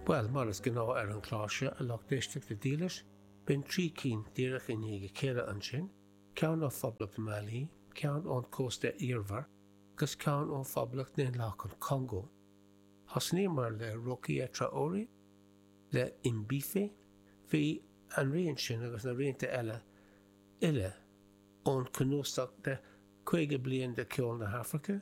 Bhuel, mar is gnáth ar an chlár seo, a lucht éisteachta dílis, b'in trí cinn díreach i ndiaidh a chéile ansin, ceann ó Phoblacht Mhailí, ceann ón Chósta Eabhair, agus ceann ó Phoblacht Dhaonlathach an Chongó. Thosnaíomar le Rokia Traoré, le Imbife, bhí an rian sin agus na rianta eile uile ón chnuasach de 50 bliain de cheol na hAfraice,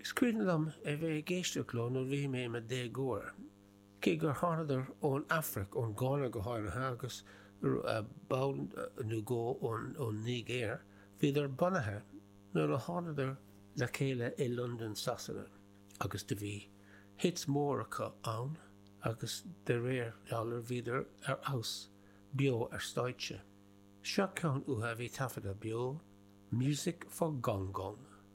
Is cuimhin liom a bheith ag éisteacht leo nuair a bhí mé i mo dhéagóir, cé gur thánadar ón Afraic, ón Gána go háirithe, agus ball nó dhó ón Nigéir, bhíodar bunaithe nuair a thánadar le chéile i Londain, Sasana, agus do bhí hit mór acu ann agus de réir dealraimh bhíodar ar fheabhas beo ar stáitse. Seo ceann uatha a bhí taifeadta beo, Music for Gong Gong.